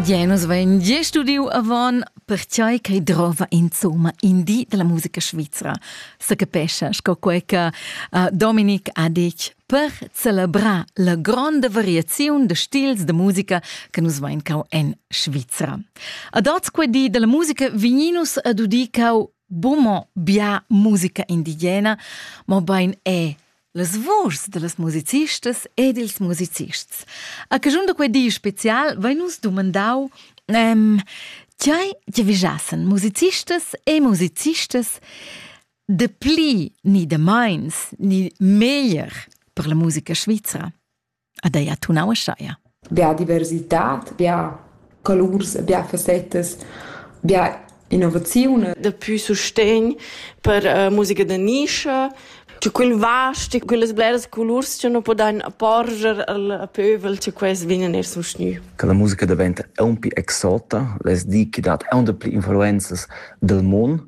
Genus vain gia studiu avon pertgei ch'ei drova insomma in di dalla musica svizra, secapescha sco quei che uh, Dominik ha detg per celebrar la gronda variaziun de stils de musica che nus vain cau en Svizra. Ad oz quei di della musica vigninus ad udi cau bumo bia musica indigena, ma bein è Las vuschs da las musicistas ed ils musicists. A caschun da quei di special vein nus dumandau ehm, tgei giavischassen musicistas e musicistas de pli ni de meins ni meglier per la musica svizra. ad ei attunau ascheia. Bia diversitad, bia colurs, bia facetas, bia innovaziun. Dapi sustegn per uh, musica da nischa, C'è quel vasti, quelle bleras colurs che non podan porger al pövel, che quels vienen er sustgnü. Che la musica diventa un più exota, les di che dat un da pli influenzas del mondo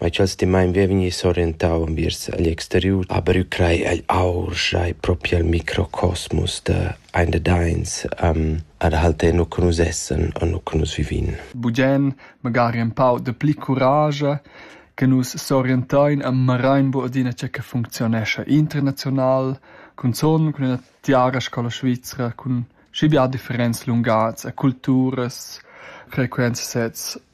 Ma cha'l stimaint vegn vegni s'orientau enviers igl exteriur, aber eu craj egl aur schai propi al microcosmus da ein da dains um, ad halter nu che nus essan e nu che nus vivin. Bugen magari empau de pli curage che nus s'orientain e marain bu adina tge che functionescha internazional, cunzon cun una tiara scola svizra, cun schi bia differents lungats e culturas, frequenzsets